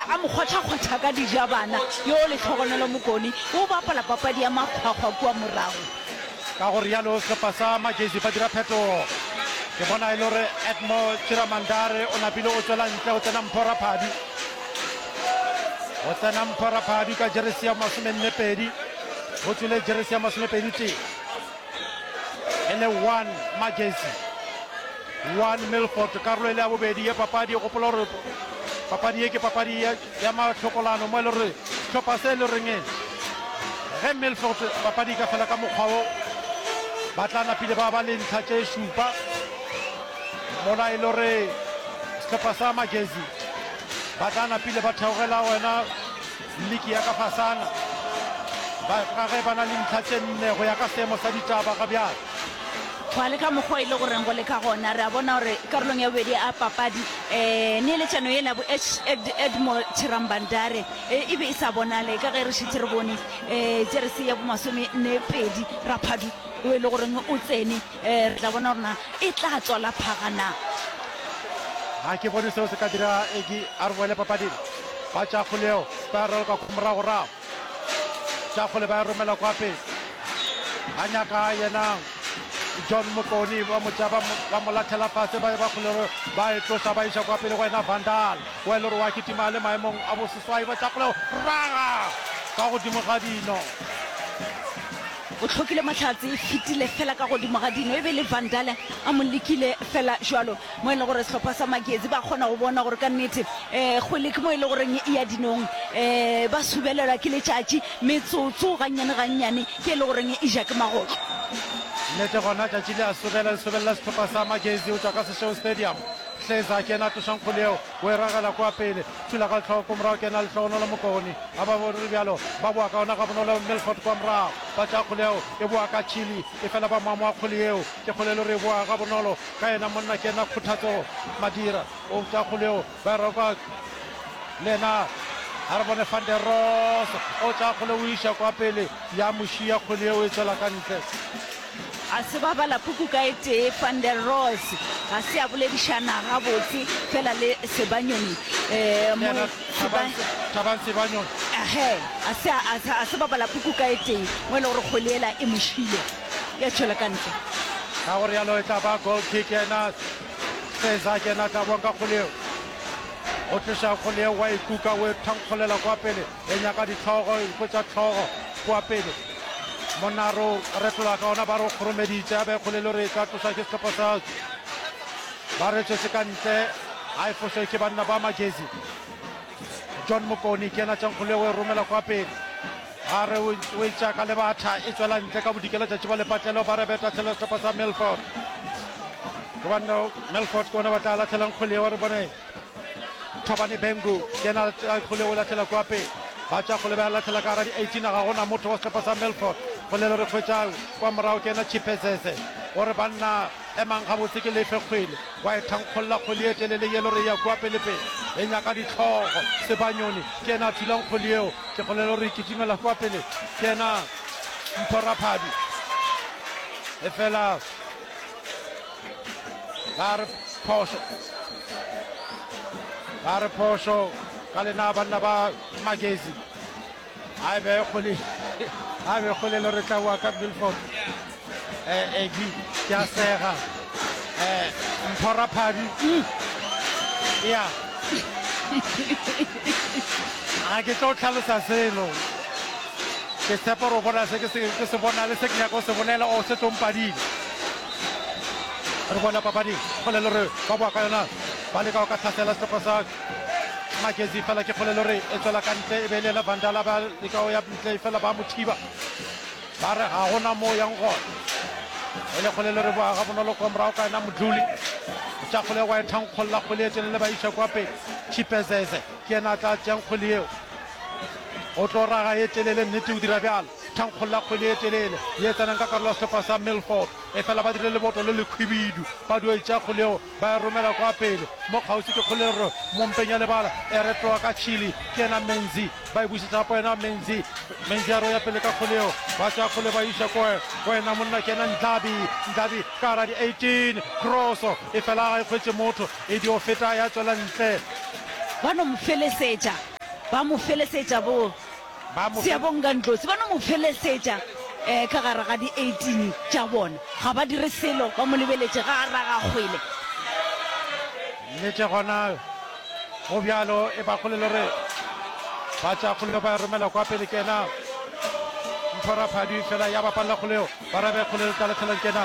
A mo kgwathakgwatha ka dijabana, yo lehlogonolo mokoni, o bapala papadi ya makgwakgwa kua morago. Ka go rialo sepa sa Magesi ba dira phetogo. Ke bona e le gore Edmore Chiramandare o napile go tšwela ntle go tsena Mpho Raphadi. Go tsena Mpho Raphadi ka jeresi ya masomenne pedi, go tswile jeresi ya masomepedi tee. e le one Majersey one Milford karolo e le ya bobedi ye papadi e gopola gore papadi ye ke papadi ya matlhokolano mo e le gore tlhopha se e le reng ge Milford papadi e ka fela ka mokgwa o ba tla napile ba ba le ntlha tše šupa mola e le gore setlhopha sa Majersey ba tla napile ba theogela wena Liki ya ka fasana ba ka ge ba na le ntlha tše nne go ya ka seemo sa ditaba ga bjale. Gwa le ka mokgwa e le goreng go le ka gona re a bona gore karolong ya bobedi a papadi um neeletšano yela bo Ed, Edmo Chirambandare e, e be e sa bonale ka ge re šetše re bone um jeresi ya bomasome nne pedi Raphadu o e le goreng o tsene Ee, re tla bona gore na e tla tswa la phaga na. Ga ke bone seo se ka dira Egi a re boele papading. Ba Tšafole yeo ba ya raloka kwa moragorago. Tšafole ba ya romela kwa pele. Ba nyaka yena John Motloni ba mo tšea ba mo- ba mo lathela fase ba ba kgolero ba e tloša ba iša kwa pele go yena Vandal wa e le gore wa kitima a le maemong a boseswai ba Tšafole raga ka godimo ga dino. O hlokile mahlatse e fetile fela ka godimo ga dino, e be e le Van Dalle a mo lekile fela jwalo, mo e lego gore sehlopha sa Magezi ba kgona go bona gore ka nnete um kgwele ke mo e lego goreng e ya dinong. Um ba subelelwa ke letšatši, metsotso gannyane gannyane ke e lego goreng e ja ke magotlo. Nnete gona tšatši le a subela, le subelela sehlopha sa Magezi go tšwa ka Seshego Stadium. Hleza ke yena a tlošang kgwele yeo. O e ragela kwa pele. Thulagahloko morago ke yena a lehlogonolo Mokoni. Ga ba bo re bjalo. Ba boa ka gona gabonolo. Milford kwa morago. Ba tšea kgole yeo. E boa ka tšhili. Efela ba mamwa kgole yeo. Ke kgole e le gore e boa gabonolo. Ka yena monna ke yena Khuthatso Madira. O tšea kgole yeo. Ba e roka le yena a re bone Van der Ross. O tšea kgole o iša kwa pele. Ya mo šiya kgole yeo e tšwela ka ntle. A se ba bala puku ka e tee, Van der Roos ga se a boledišana gabotse fela le Sebanyoni. Thabang Sebanyoni. Ehe, a se a, a, a se ba bala puku ka e tee, mo e le gore kgole ela e mo šile. Ya tšwela ka ntle. Ka gore yalo e tla ba goal kick yena Seza ke yena tla boa ka kgole eo. O tloša kgole eo wa e kuka, o e thankgolela kwa pele. e nyaka dihlogo iko tša hlogo kua pele monna ro retola ka ona ba ro kgoromeditše a be kgole le re tla tlosa ke sehlopha sa ba re tšese ka ntle a e fose ke banna ba magezi john mokoni ke ena tšankgole o e romela kwa pele a re o e tšaka le batha e tswela ntle ka bodikela tšatši ba lepatlelo ba re beta tshela sehlopha sa melford ke banna melford ke ona ba tla latlhelang kgole wa re bone Thabane Bengu yena a kgole o latlhela kwa pele ba tša kgole ba ya latlhela ka gara di 18 ga gona motho wa sehlopha sa Melfort kgolelo re hwetša kwa morago ke yena Chipezeze o re banna emang gabotse ke lefe kgwele wa e thankgolla kgwele e telele yelo re ya kwa pelepele e nyaka ditlhogo sebanyoni ke yena a thulang kgwele yeo ke kgolelo re ikitimela kwa pele ke yena mphoraphabi efela ba re phošo ba re phošo ka lena banna ba magezi a be kgole a be kgole lo re tlawa ka milford um ab ke a sega um mphora phadi ya ga ke tlo tlhalosa selo Ke tshepa gore o bona se ke se bona le se ke nyaka o se bolela o se tlompadi. Re bona papadi go le lore ba boa ka yona ba leka go ka tlhasela setlhogo sa Magezi fela ke kgole lore e tswela ka ntle e be e le ena Vandala ba leka go ya ntle fela ba mo thiba ba re ga gona moo yang gona e le kgole lore boa ga bonolo kwa morago ka yena modluli tša kgole wa e thankgolola kgole e tšwelele ba iša kwa pele chipezeze Ke yena a tla tšeang kgwele yeo. O tlo raga ye telele, nnete, o dira bjalo. Thankgolla kgwele ye telele ye tsenang ka karolo ya sehlopha sa Milford. Efela ba dirile leboto le lekhwibidu. Ba dio e tšea kgwele yeo, ba e romela kwa pele. Mo kgauswi ke kgwele rro mo mpeng ya lebala, e retloga ka Chili. Ke yena Menzi. Ba e bušetša go yena Menzi. Menzi a roya pele ka kgwele yeo. Ba tšea kgwele ba e iša ko go yena monna, ke yena Ndlabi. Ndlabi ka gare ga di 18. Kroso e fela ga e hwetše motho. E dio feta ya tšwela ntle. Ba no mo felesetša, ba mo felesetša bo Ba mo fe- Seabonga Ndlozi. Ba no mo felesetša um ka gare ga di-eighteen tša bona. Ga ba dire selo, ba mo lebeletše ga a raga kgwele. Nnete gona go bjalo e ba kgolelo re ba tša kgolelo ba romela kwa pele kena Mphoraphadi fela ya ba palela kgoleo ba rabe kgolelo tla lefela kena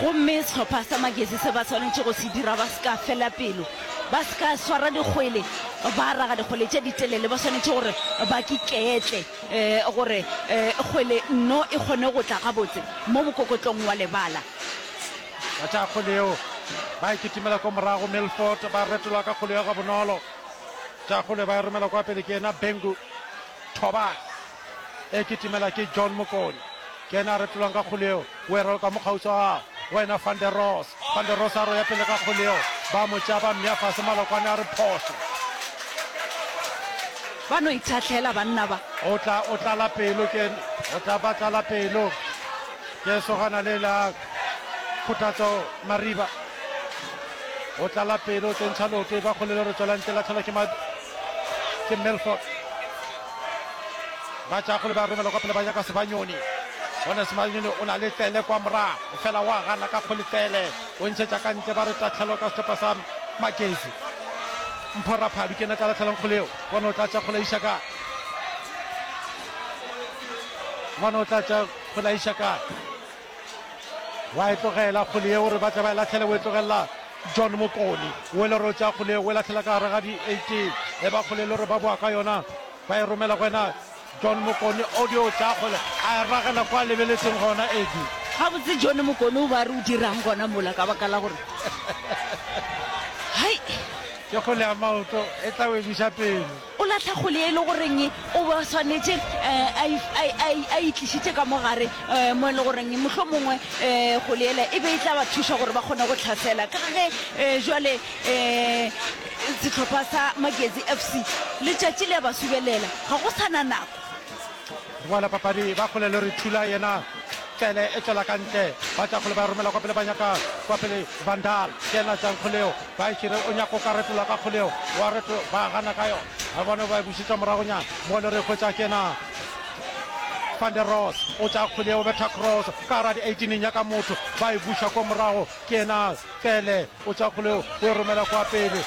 Gomme sehlopha sa Magesi se ba swanetše go se dira, ba se ka fela pelo, ba se ka swara dikgwele, ba raga dikgwele tše ditelele, ba swanetše gore ba kiketle, e, gore e, kgwele nno e kgone go tla gabotse mo mokokotlong wa lebala. Ba tšea kgwele yeo, ba e kitimela ko morago, Milford ba retola ka kgwele ya gabonolo, tšea kgwele ba e romela kwa pele ke yena Bengu, Thoba. e kitimela ke John Mokone ke yena a retolwang ka kgole eo o e raloka mo kgauswa gago go ena van der Ross van der Ross a roya pele ka kgole eo ba mo tšea ba mmea fase malokwane a re phoso ba no ithatlhela banna ba o tla o tlala pelo ke o tla ba tlala pelo ke sogana le la khuthatso mariba o tlala pelo tsentsha loke ba kgolelo re tswela ntle la tlhola ke ke Milford ba tšakgole ba romela kwa pele ba nyaka Sebanyoni gone Sebanyoni o na le tlele kwa morago fela wa gana ka kgole tlele o ntšhetša ka ntle ba re tatlhelo ka setepa sa Magezi Mphoraphadu ke ena tla latlhelang kgole eo bona o tla tša kgole iša kae bona o tla tša kgole iša kae wa e tlogela kgole yeo re batla ba e latlhele o e tlogelela john mokoni o e le ro tša kgole o e latlhela ka gare ga di-eighteen e ba kgole le re ba boa ka yona ba e romela go wena john mokoni audio o tla kgole a e ragela kwa lebeletseng gona edi ga botse john mokoni o ba re o dirang gona mola ka baka la gore hai ke kgole ya maoto e tla o ebiša pele O lahla kgole e le goreng o ba swanetše a itlišitše ka mo gare, mo e le goreng mohlho mongwe kgole yela e be e tla ba thuša gore ba kgone go tlhasela. Ka ge jwale sehlopha sa Magezi FC letšatši le a ba subelela, ga go sa na nako. Boala papadi ba kgole le re thula yena Tlele e tšwela ka ntle ba tša kgole ba romela kwa pele ba nyaka kwa pele Van Daal ke yena tšang kgoleo ba e šire o nyaka o ka retola ka kgoleo wa reto ba gana ka yona ba bone ba e bušetša moragonyana mo le re hwetša ke yena Van der Ross o tša kgoleo betha cross ka gara di 18 nyaka motho ba e buša kwa morago ke yena Tlele O tšha kgoleo, o e romela kwa pele.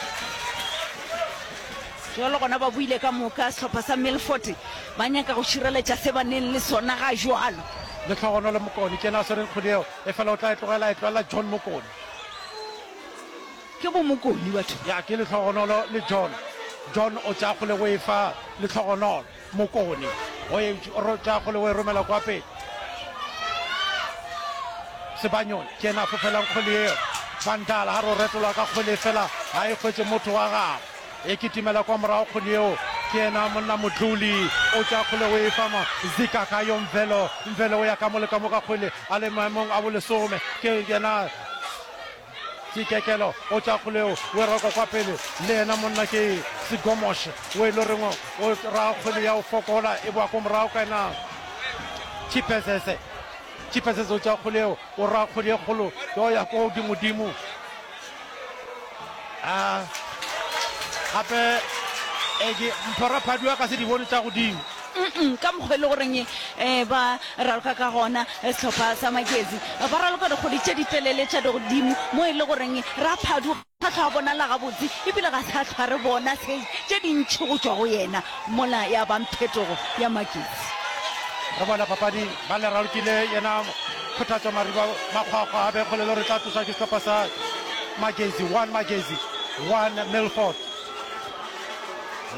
Bjalo gona ba buile ka moka, sehlopha sa Milford ba nyaka go šireletša se ba neng le sona ga jwalo. Lehlogonolo Mokone ke yena a swereng kgwele yeo, efela o tla e tlogela, e tlogelela John Mokone. Ke bo Mokone batho. Ya, ke Lehlogonolo le John. John o tšea kgwele o e fa Lehlogonolo. Mokoni o e tša kgole o e romela kwa pele. Sebanyoni ke ena a fofelang kgole eo. Vandala ha ro retolwa ka kgole fela ha e hwetse motho wa gago. E kitimela kwa morago kgole eo ke ena monna Modluli o tša kgole o e fama zika ka yo Mvelo. Mvelo o ya ka mole ka mo ka kgole a le maemong a bolesome ke yena Tsikekelo o tšwa kgole o e roko kwa pele le yena monna ke Sigomosh o e lo reng o ra kgwele ya o fokola e boa ko morago ka yena Chipesese. Chipesese o tšwa kgole o o ra kgwele e kgolo yo ya ko godimodimo a gape e ke mphora phadiwa ka se di bone tša godimo Umm, ka mokgwa e le goreng eh, ba raloka ka gona eh, sehlopha sa Makezi eh, ba raloka dikgodi tše di telele tša dogodimo mo e le goreng eh, Raphadu ga hlwa a bonala gabotse ebile ga sa hlwa re bona se tše dintšhi go tšwa go yena mola ya bang phetogo ya Makezi. Re bona papadi ba le ralokile yena Kgothatso Mariba Makgwakgwa a be kgole le gore tla tloswa ke sehlopha sa Magezi, one Magezi, one Milford.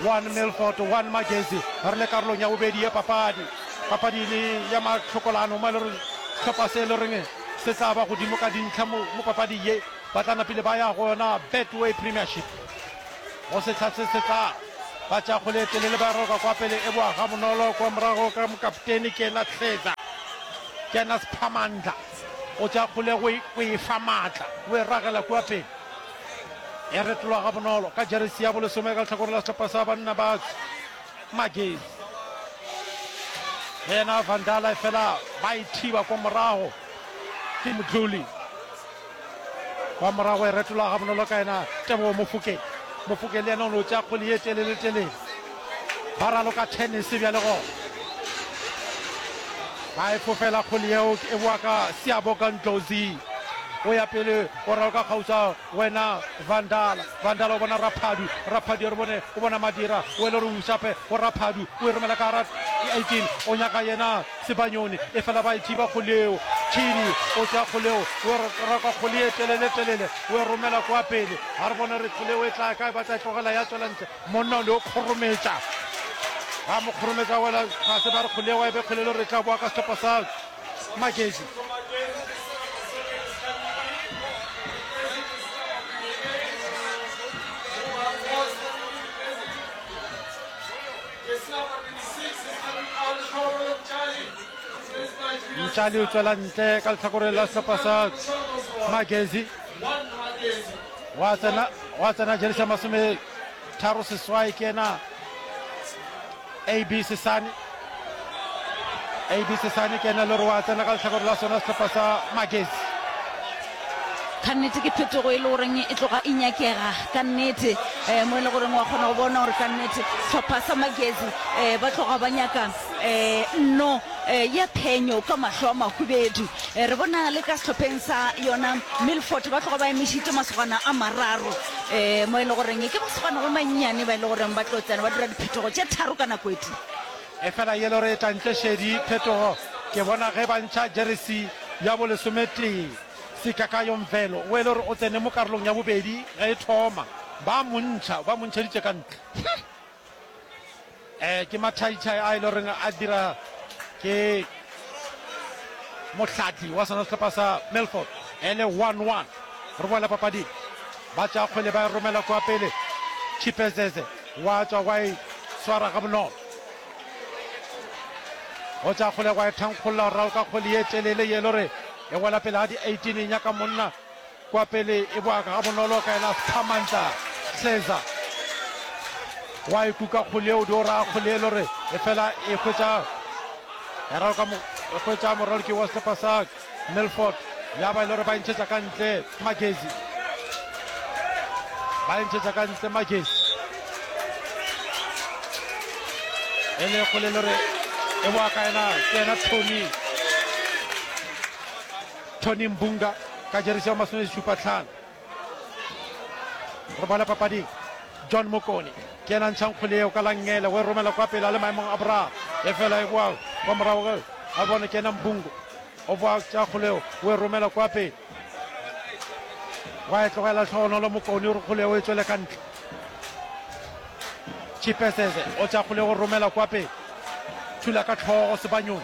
One Milford, one Magezi. Re le karolong ya bobedi ya papadi. Papadi le ya mahlokolano mo e le reng hlopha se e le reng se tla ba godimo ka dintlha mo mo papading ye ba tla napile ba ya go yona Betway Premiership go sehla se se tla ba tša kgole e telele ba roka kwa pele e boa ga bonolo kwa morago ka mokapteni ke ena Tlheza ke ena Sphamandla o tša kgole go e fa maatla o e ragela kwa pele E retolwa gabonolo ka jeresi ya bolesome ka lehlakore la sehlopha sa banna ba Magesi. Le yena Vandala efela ba e thiba kwa morago ke Mdluli. Kwa morago e retolwa gabonolo ka yena Tebogo Mofokeng. Mofokeng le yena o no tšea kgwele ye telele-telele. Ba raloka tennis bjale gona. Ba e fofela kgole yeo e boa ka Siyaboka Ndlozi. O ya pele o raloka kgauswa wena Vandala. Vandala o bona Raphadu. Raphadu ya re bone o bona Madira. O ele re usape go Raphadu. O e romela ka gara 18 o nyaka yena Sebanyoni. E fela ba e thiba kgole yeo. Chidi o tsea kgole yeo o e raloka kgole ye telele telele o e romela kwa pele. Ga re bone re kgole yeo e tla kae ba tla e tlogela ya tswela ntle. Monna o ne o kgorometša. A mo kgorometša a wela fase ba re kgole wa e be kgolelo re tla boa ka sehlopha sa Magezi. Mtšali o tswela ntle ka lehlakoreng la sehlopha sa Magezi. gwa tsena gwa tsena jeresi ya masome tharo seswai ke ena ab sesane ab sesane ke ena le gore wa tsena ka letlhakore la sona setlhopha sa magesi ka nnete ke phetogo e le goreng e tloga e nyakega ka nnete um mo e le goreng wa kgona go bona gore ka nnete setlhopha sa magesi um ba tloga ba nyakang Nno ya phenyo ka mahlo a mahubedu. Re bona le ka sehlopheng sa yona Milford ba tloga ba emišitše masogana a mararo mo e le goreng ke masogana ba mannyane ba e le goreng ba tlo tsena ba dira diphetogo tše tharo ka nako e tee. Efela yellow re etla ntle šedi phetogo ke bona ge ba ntšha jeresi ya bolesometee. Sikakayo Mvelo o e le gore o tsene mo karolong ya bobedi ge e thoma ba mo ntšha ba mo ntšheditše ka ntle. Eh ke mathaithai a e le goreng a dira ke mohlatli wa sona sehlopha sa Milford e le 1-1 re boela papading ba tša kgwele ba e romela kwa pele Chipezeze wa tšwa wa e swara ga bonolo o tša kgwele wa e thankgolola go raloka kgwele ye telele ye e le gore e wela pele ga di-18 e nyaka monna Kwa pele e bwaka gabonolo ka yena Samantha Hleza. Wa e kuka kgole eo, do ra kgole e lore e fela e hwetša ya raloka mo e hwetša moraloki wa sepa sa Milford ya ba e lore ba entšhetša ka ntle Magezi. Ba entšhetša ka ntle Magezi. E le kgole e lore e bwaka yena ke yena Tony. Tony Mbunga ka jeresi ya masomešupa tlhano. Re boela papading. John Mokone ke yena a ntšhang kgole yeo ka langele go e romela kwa pele a le maemong a boraro efela e boa kwa morago ge a bona ke yena Mbungo o boa tša kgole yeo o e romela kwa pele wa e tlogela tlhogonolo Mokone o re kgole yeo e tswele ka ntle Chipesese o tša kgole go romela kwa pele thula ka tlhogo Sebanyong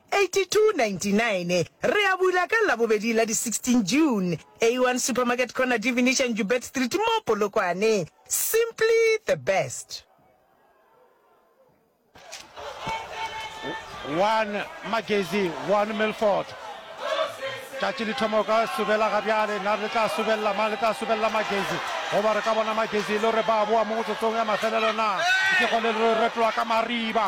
8299 Re a bula ka Labobedi la di 16 June, A1 Supermarket Corner Divinisha Njubet Street mo Polokwane. Simply the best. One Magezi, One Milford. Tšatši le thoma ka subela ga bjale na le tla subelela mang le tla subelela magezi goba re ka bona magezi e le gore ba boa mo motsotsong ya mafelelo na ke go le retloa ka mariba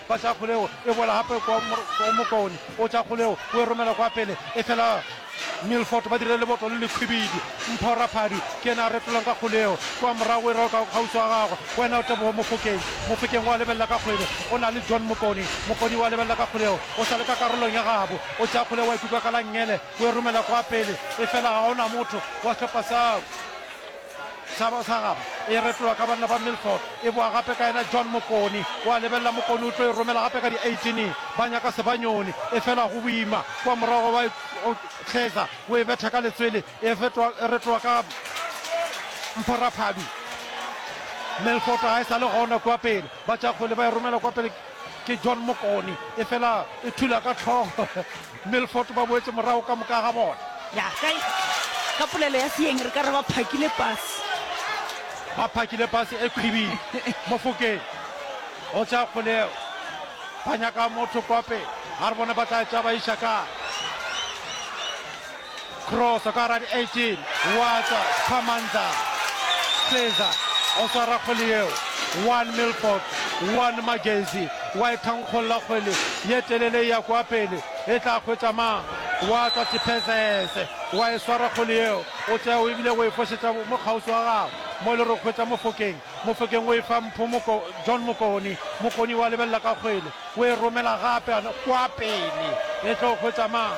Ba tšea kgoleo, e boela gape kwa mokaone, o tšea kgoleo, o e romela kwa pele, efela Milford ba dirile leboto le lekhwibidi. Mpho Raphadi ke yena a retolang ka kgoleo, kwa morago e rwalwa ka kgauswi wa gagwe, go yena Teboho Mofokeng. Mofokeng o a lebelela ka kgwele, o na le John Mokoni. Mokoni o a lebelela ka kgoleo, o sa le ka karolong ya gabo, o tšea kgoleo, wa e kuka ka langele, o e romela kwa pele, efela ga go na motho wa sehlopha sa Hlaba sa gabo e retolwa ka banna ba Milford, e boa gape ka yena John Mokoni. O a lebelela Mokoni o tlo e romela gape ka di 18, ba nyaka sebanyoni, e fela go boima. Kua morago wa e tlheza, o e betha ka letswele, e retolwa ka Mphoraphadu. Milford ga e sa le gona kua pele, ba tša kgwele ba e romela kua pele ke John Mokoni, e fela e thula ka hlogo. Milford ba boetše morago ka moka ga bona. Ya, ka, ka polelo ya Seeng re ka re ba phakile pase. Ba phakile pase e khwibile mofokeng. Go tšea kgoleo. Ba nyaka motho kwa pele. A re bone ba tla tšea ba iša kae. Kroso ka gara di 18, wa tswa, Khamandza, Seza, o swara kgwele yeo, one Milford, one Magezi, wa e thankgolla kgwele ye telele e ya kua pele, e tla hwetša mang? Wa tswa Sipezese, wa e swara kgwele yeo, o tšea o ebile o e fošetša mo kgauswi wa gago, mo e le gore o hwetša Mofokeng, Mofokeng o e fa Mpho Moko, John Mokoni, Mokoni wa lebelela ka kgwele, o e romela gape, kua pele, e tlo hwetša mang?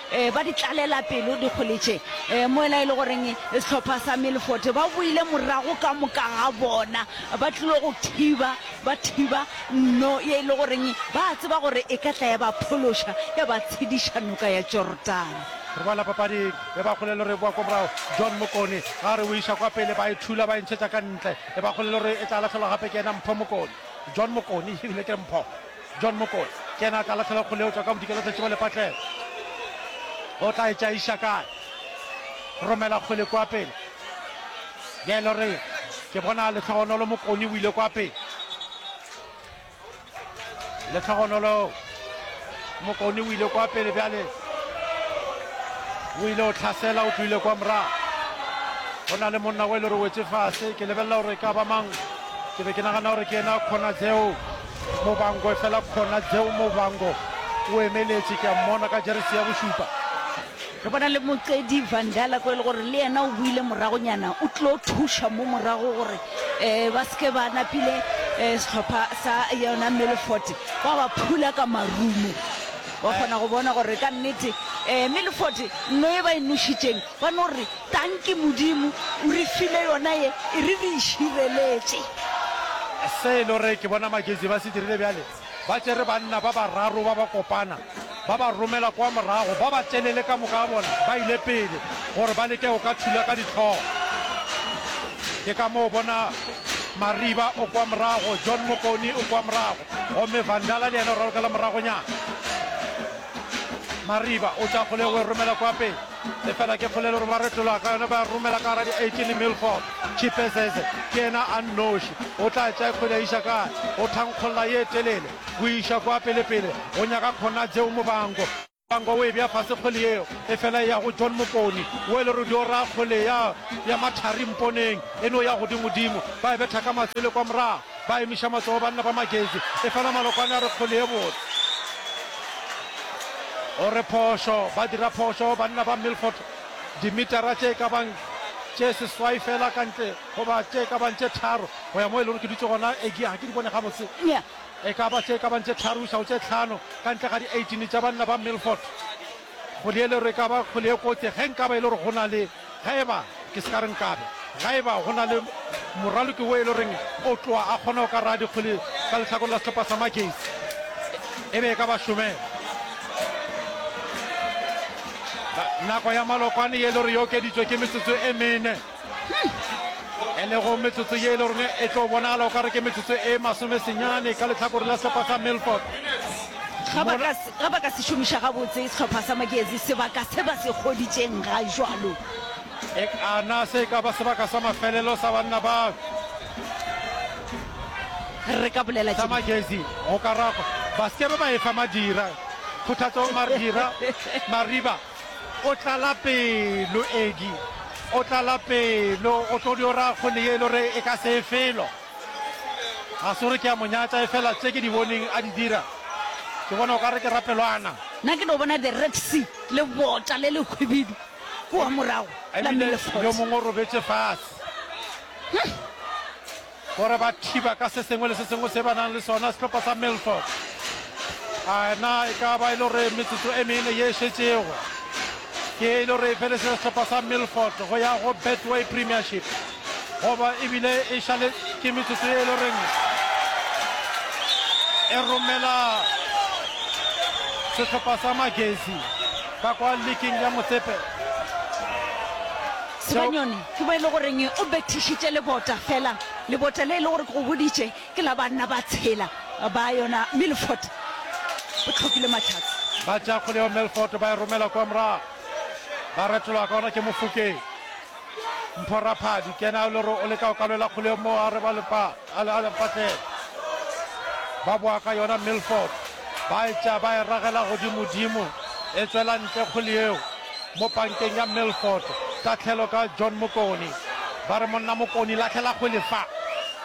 e, ba di tlalela pelo dikgole tše e, mola e le goreng sehlopha sa Milford ba boile morago ka moka ga bona ba tlilo go thiba ba thiba nno ye e le goreng ba tseba gore e ka tla ya ba phološa ya ba tshediša noka ya Jordana re boela papading e ba kgolelo re boa kwa morago john mokone ga re o iša kwa pele ba e thula ba e ntšhetša ka ntle e ba kgolelo re e tla latlhelwa gape ke ena mpho mokone john mokone ebile ke mpho John Mokoena ke yena a tla lahlela kgole eo tšwa ka bodikela tša Tšiba Lepatlelo. O tla e tšaiša kae? Romela kgole kwa pele. Bjale re ke bona Lehlogonolo Mokoni o ile kwa pele. Lehlogonolo Mokoni o ile kwa pele bjale. O ile o tlhasela o tloile kwa morago. Go na le monna o e le gore o wetse fase ke lebelela gore ka ba mang ke be ke nagana gore ke yena Khonadzeo Mobango efela khona Jeo Mobango o emeletše, ke a mmona ka jeresi ya bošupa. Re bona le Moqedi Van Dalk e le gore le yena o buile moragonyana, o tlo thuša mo morago gore um ba se ke ba napile um sehlopha sa yona Milford ba ba phula ka marumo. Wa kgona go bona gore ka nnete um Milford nno e ba e nošitšeng Ba no re, Tanki Modimo o re file yona ye, e re re e šireletše. Se e le gore ke bona Maketsi ba se dirile bjale, ba tšere banna ba bararo ba ba kopana, ba ba romela kwa morago, ba ba tšelele ka moka ga bona ba ile pele gore ba leke go ka thula ka dihlogo. Ke ka moo o bona Mariba o kwa morago, John Mokoni o kwa morago, gomme Vandala le yena o ralokela moragonyana. Mariba o tšea kgolego o e romela kwa pele. Efela ke kgolelo gore ba retlola ka yona ba ya romela ka gara di-18 Milford. Chipezeze ke yena a nnoši. O tla tšea kgwele a iša kae? O thankgolla ye telele go iša kwa pelepele go nyaka Khonadzeo Mubango. Mubango o e bea fase kgwele yeo, efela e ya go John Mokoni. Wo e le ruri o raya kgwele ya ya mathari mponeng, e no ya godimodimo. Ba e betha ka matswele kwa morago. Ba emiša matsogo banna ba Magezi, efela Malokwane a re kgole ye botse. O re phošo, ba dira phošo banna ba Milford dimetara tše e ka bang tše seswai fela ka ntle goba tše e ka bang tše tharo go ya moo e lego ke dutše gona. Egee ga ke di bone gabotse. E ka ba tše e ka bang tše tharo go iša go tše hlano ka ntle ga di-eighteen tša banna ba Milford. Go le yelo re ka ba kgole e kotse ge nka ba e le gore go na le, ge e ba, ke se ka re nka be, ga e ba go na le moraloki wo e le goreng o tloa a kgona go ka raya dikgole ka lehlakoreng la sehlopha sa Magesi, e be e ka ba šomela. Nako ya malokwane ye e le gore e okeditšwe ke metsotso e mene. e lego metsotso ye e le rone e tlo bonagala o ka re ke metsotso e masome senyane ka letlhakore la sehlopha sa milford ga ba ka se šomiša gabotse sehlopha sa magezi sebaka se ba se kgoditšeng ga jalo e kana se ka ba sebaka sa mafelelo sa banna ba re ka bolela sa magezi go ka ragwa ba se ke ba efa madira kgothatsong madira mariba O tlala pelo, Eddie. O tlala pelo. O tlo dio ra kgole ye e lo re e ka se e felo. Ga se gore ke a mo nyatša, e fela tše ke di boneng a di dira, ke bona o ka re ke rapelwana. Nna ke no bona the Red Sea, lebota le le hwibidu kua morago, la Ebile yo Milleford. mongwe o robetše fase. Huh! Gore ba thiba ka se sengwe le se sengwe se ba nang le sona sehlopha sa Milford. A na e ka ba e le gore metsotso e mene ye e šetšego ke e le gore e felese sehlopha sa Milford go ya go Betway Premiership goba ebile e šale ke metsotso ye e le goreng e romela sehlopha sa Magezi ka kwa likeng ya Motsepe. Sebanyone, ke mo e le goreng o bethišitše lebota, fela lebota le e le gore ke go boditše ke la banna ba tshela ba yona Milford, o tlhokile mahlatse. Ba tšea kgole yeo Milford ba e romela kwa morago, ba retologa ka gona ke Mofokeng. Mpho Raphadi ke yena yo e le gore o leka go kalwela kgole yeo moo a re ba le palo. Ba boa ka yona Milford, ba etša ba e ragela godimodimo, e tšwela ntle kgole yeo mo pankeng ya Milford. Tahlelo ka John Mokoni. Ba re, Monna Mokoni, lahlela kgole fa.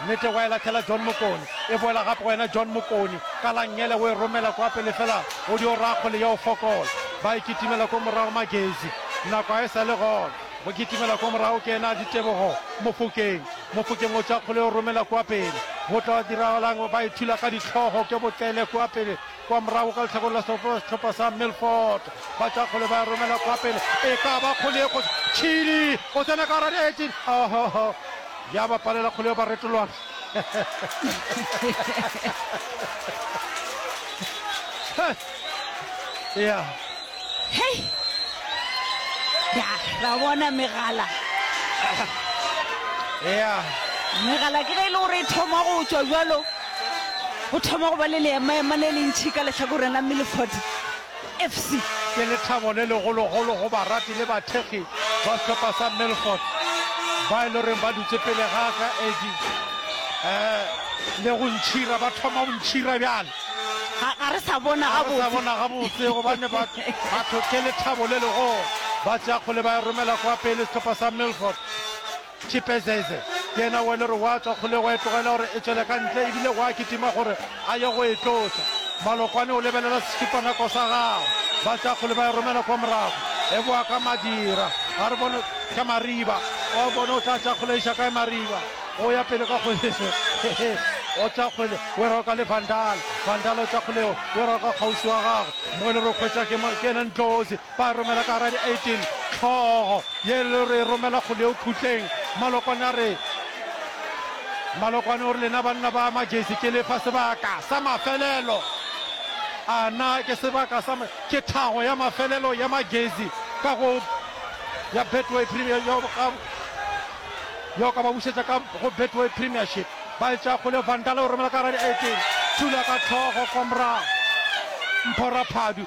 Nnete wa e lahlela John Mokoni. E boela gape go yena John Mokoni. Ka la nngele o e romela kwa pele fela o dio raya kgole yeo fokola. Ba e kitimela ko morago Magezi. Nako ga e sa le gona. Go kitimela kwa morago ke ena Ditebogo Mofokeng. Mofokeng o tšwa kgole o romela kwa pele. Go tla diragalang? Ba ithula ka dihlogo ke Botlele kwa pele kwa morago ka lehlakore la sehlopha sa Milford. Ba tšwa kgole ba e romela kwa pele. E ka ba kgole e kgotsa Chili o tsena ka gara di-18. Ohoho! Ya ba palela kgole ba retolwana. ya hei ya ra bona megala ya megala ke ge e le gore e thoma go tswa jalo o thoma go ba le leemaema le le ntšhi ka letlhakoreng la mmeleford FC ke lethabo le legologolo go barati le bathekgi ba sehlopha sa Milford ba e le goreng ba dutše pele ga ka Eddie eh, le go ntšhira, ba thoma go ntšhira bjale. Ga, ga re sa bona Ga re sa gabotse. bona gabotse gobane batho batho ke lethabo le legolo ba tšea kgole ba e romela kwa pele sehlopha sa Milford. Chipezeze, yena o e le gore wa tswa kgole go e tlogela gore e tšwele ka ntle ebile wa kitima gore a ye go e tlosa. Malokwane o lebelela sešipanako sa gagwe, ba tša kgole ba e romela kwa morago, e boa ka madira. A re bone ka Mariba, o a bone o tla tša kgole iša kae Mariba, o ya pele ka kgole hehe, o tša kgole o e roka le Vandal, Vandal o tša kgole o e roka kgauswi wa gagwe mo e le gore o hwetša ke yena Ndlozi. Ba romela ka gara di 18 hlogo ye le re romela go leo khutleng. Malokwane a re Malokwane o re lena banna ba Majesi ke lefa sebaka sa mafelelo a na ke sebaka sa ke thago ya mafelelo ya Majesi ka go ya Betway Premier yo ka yo ka ba bušetša ka go Betway Premiership ba e tša go le Vandale o romela ka gara di 18 thula ka hlogo kwa morago Mpho Raphadu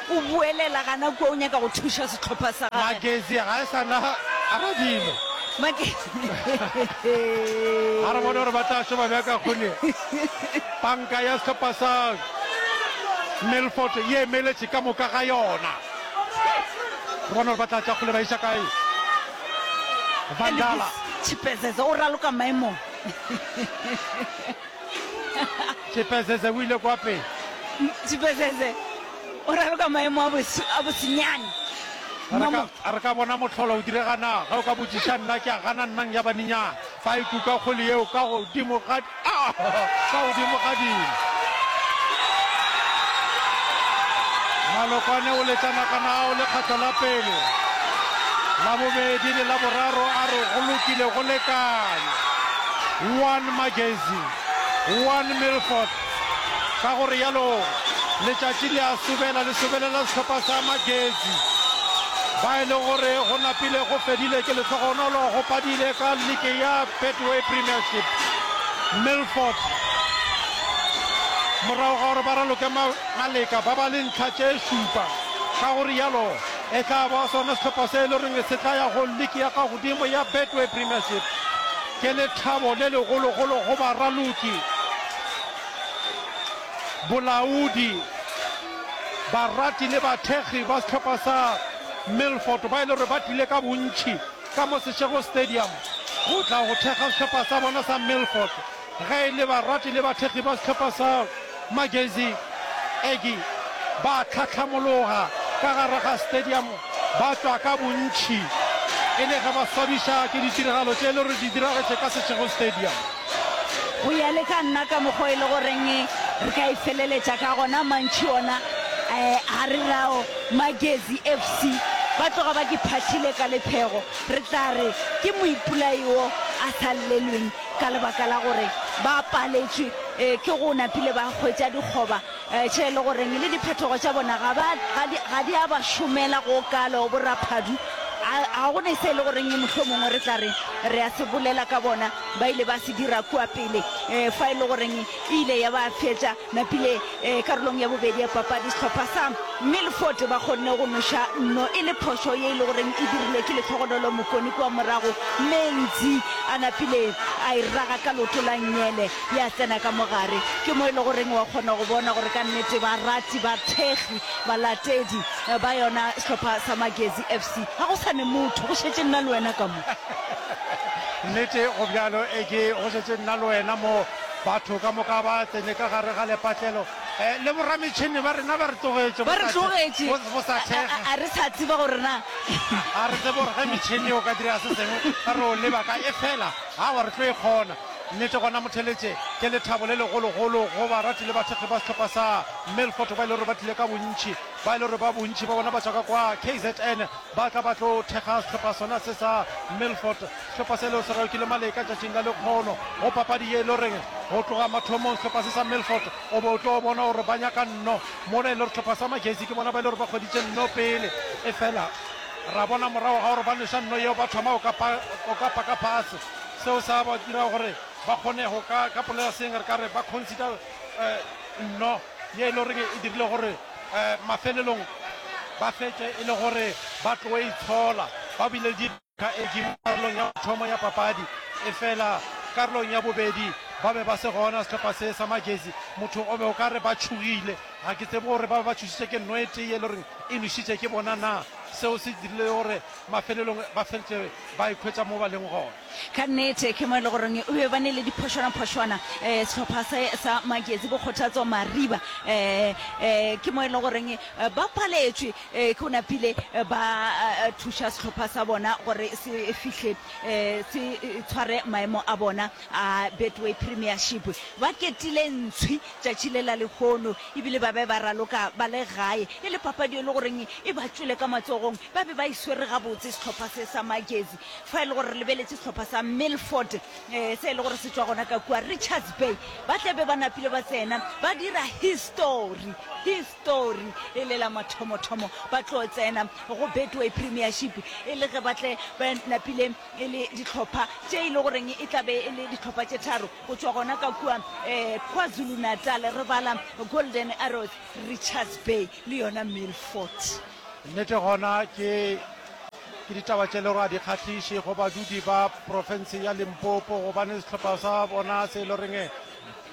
O boelela gana kua o nyaka go thuša sehlopha sa gagwe. Magezi ga e sa na radimo. Ga re bone gore ba tla šoma bjang ka kgone panka ya sehlopha sa Milford ye emeletše ka moka ga yona. Re bone gore ba tla tša kgole ba iša kae. Vandala. Elvis Chipezeze o raloka maemong. Tshipesese o ile kwa pele. Tshipesese o raloka maemo a bosenyane. A re ka bona mohlolo o direga na? Ge o ka botšiša nna ke a gana nnang ya baninyana. Fa e kuka kgole yeo ka godimo ga dimo. Malokwane o letša nagana ao lekgatlo la pele, la bobedi le la boraro a re go lokile go lekane. One Magazine, One Milford, ka go realo letšatši le a sobela le sobelela sehlopha sa Magezi ba e le gore go napile go fedile ke lehlogonolo go padile ka leke ya Betway Premiership. Milford morago ga gore ba raloke maleka ba ba le ntlha tše šupa, ka go realo E tla ba sona sehlopha se e le goreng se tla ya go liki ya ka godimo ya Betway Premiership. Ke lethabo le legologolo go baraloki, bolaodi, barati le bathekgi ba sehlopha sa Milford ba e le gore ba tlile ka bontši ka mo Seshego Stadium go tla go thekga sehlopha sa bona sa Milford. Ge e le barati le bathekgi ba sehlopha sa Magezi Aggie ba tlhahlamologa ka gare ga stadium ba tšwa ka bontši e le ge ba swabiša ke ditiragalo tše e le gore di diragetše ka Seshego Stadium. Go ya le ka nna ka mokgwa e le goreng re ka e feleletša ka gona mantši ona a re rao Magezi FC ba tloga ba ke phathile ka lephego re tla re ke moipolai wo a sa llelweng ka lebaka la gore ba paletšwe eh, ke go napile ba hwetša dikgoba eh, tše e le goreng le diphetogo tša bona ga ba- ga di- ga di a ba šomela go kalo boraphadu a- ga go ne se e le goreng mohlho mongwe re tla re re a se bolela ka bona ba ile ba se dira kua pele um fa e le goreng e ile ya ba fetša Napile ee, karolong ya bobedi ya papadi sehlopha sa Milford ba kgonne go noša nno e le phošo ye e le goreng e dirilwe ke letlhogonolo mokoni kua morago mme Ngzi a napile a e raga ka loto la nnyele ya tsena ka mogare ke mo e le goreng wa kgona go bona gore ka nnete barati ba thekgi balatedi eh, ba yona sehlopha sa Magezi FC ga go sa ne motho go šetse nna le wena ka mo nnete go bjalo e ke go šetse nna le wena mo Batho ka moka ba tsene ka gare ga lepatlelo, le borametšhene ba rena ba re tlogetše, Ba re tlogetše, go sa thekga. A re sa tseba gore na. Ga re tsebe gore ge metšhene e o ka dira se sengwe, re yo leba kae. Efela aowa, re tlo e kgona. Nnete gona, Motheletše ke lethabo le legologolo go barati le bathekgi ba sehlopha sa Milford ba e le gore ba tlile ka bontši, ba e le gore ba bontši ba bona ba tšwa ka kwa KZN ba tla ba tlo thekga sehlopha sona se sa Milford. Sehlopa selo se ralokile maleka tšatšing la lekgono go papadi ye e le goreng go tloga mathomong sehlopa se sa Milford o be o tlo bona gore ba nyaka nno mola e le gore sehlopa sa Majersey ke bona ba e le gore ba kgweditše nno pele efela ra bona morago ga gore ba nweša nno yeo ba thoma go ka paka phase seo sa ba dira gore ba kgone go ka ka polela seng re ka re ba consider nno ye e le goreng e dirile gore mafelelong ba fetše e le gore ba tloe itshola ba bile le Ka eki mo karolong ya mathomo ya papadi, efela karolong ya bobedi ba be ba se gona sehlopha se sa majezi. Motho o be o ka re ba tšhogile. Ga ke tsebe gore ba be ba tšhošitšwe ke nno e tee ye le goreng e nwešitše ke bona na. Seo se dirile gore mafelelong ba feletše ba ikhwetša mo ba leng gona. Ka nnete ke mo e le goreng e be ba nile diphošwana-phošwana. Sehlopha se sa majezi, Bokgothatso Mariba, ke mo e le goreng ba paletšwe Ee, go napile ba thuša sehlopha sa bona gore se fihle se tshware maemo a bona a Betway Premiership. Ba ketile ntshwi tšatši le la lehono ebile ba be ba raloka ba le gae e le papadi e le goreng e ba tšwele ka matsogong. Ba be ba e swere gabotse sehlopha se sa Magezi fa e le gore re lebeletše sehlopha sa Milford se e le gore se tšwa gona ka kua Richards Bay. Ba tla be ba napile ba tsena ba dira histori. Tori e le la mathomothomo ba tlo tsena go Betway Premiership e le ge ba tle ba napile e le dihlopha tše e le goreng e tlabe e le dihlopha tše tharo go tšwa gona ka kua um KwaZulu-Natal re bala Golden Arrows, Richards Bay le yona Milford. Nnete gona ke ke ditaba tše le gore a di kgahliše go badudi ba profense ya Limpopo gobane sehlopha sa bona se e le goreng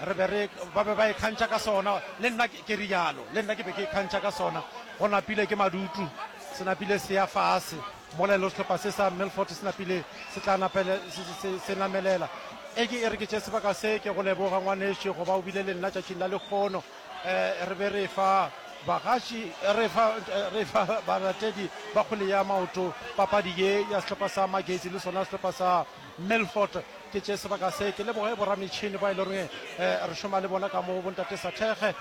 re be re ba be ba ikgantšha ka sona le nna Ke rialo. Le nna ke be ke ikgantšha ka sona. Go napile ke madutu. Se napile se ya fase. Mola elo sehlopha se sa Milford se napile se tla napele, se, se, se namelela. Eke e re ke tše sebaka se. Ke go leboga, ngwanešu, go ba o bile le nna tšatšing la lekgono. E, re be re fa bagatši, re fa, re fa balatedi ba kgwele ya maoto papadi ye ya sehlopha sa Magesi le sona sehlopha sa. Milford, ke tše sebaka se ke leboge borametšhini ba e leng gore re šoma le bona ka mo bontate Sathege.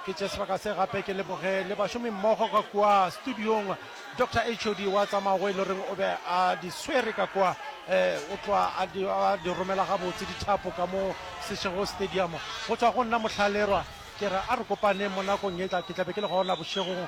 Ke tše sebaka se gape ke leboge le bašomi mmogo ka kua studiong Doctor HOD wa tsamago e leng gore o be a di swere ka kua o tloa a di, a di romela gabotse dithapo ka mo Seshego Stadium. Go tšwa go nna Mohlallerwa ke re a re kopaneng mo nakong e tla, ke tla be ke le gona bošegong.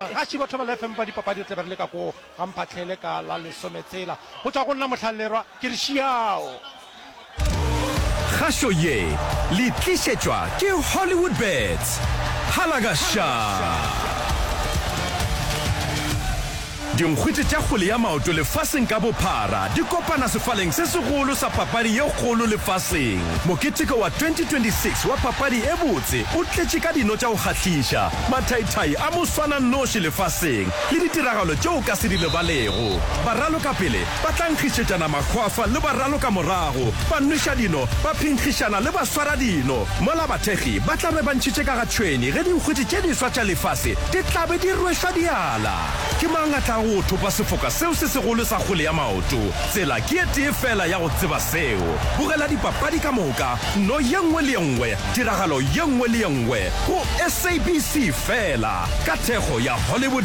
Gaši batho ba lefm ba dipapadi re tle be re le ka koo ga Mphahlele ka la lesometshela go tšwa go nna Mohlallerwa ke re šiao. Kgašo ye le tlišetšwa ke Hollywoodbets. Phalagaša! Dinkgwete tša kgwele ya maoto lefaseng ka bophara di kopana sefaleng se segolo sa papadi ye kgolo lefaseng. Moketeko wa 2026 wa papadi e botse o tletše ka dino tša go kgahliša Mathaithai a moswananoši lefaseng le ditiragalo tše o ka se di lebalego. Baralokapele ba tla nkgišetšana makgwafa le baralokamorago, banweša-dino ba phenkgišana le baswara-dino, mola bathekgi ba tla be ba ntšhitše ka ga tšhwene ge dinkgwiti tše diswa tša lefase di tla be di rwešwa diala. Ke mang a tlago go thopa sefoka seo se segolo sa kgole ya maoto? Tsela ke e tee feela ya go tseba seo. Bogela dipapadi ka moka, no ye nngwe le ye nngwe Tiragalo ye nngwe le ye nngwe go SABC fela ka thekgo ya Hollywood.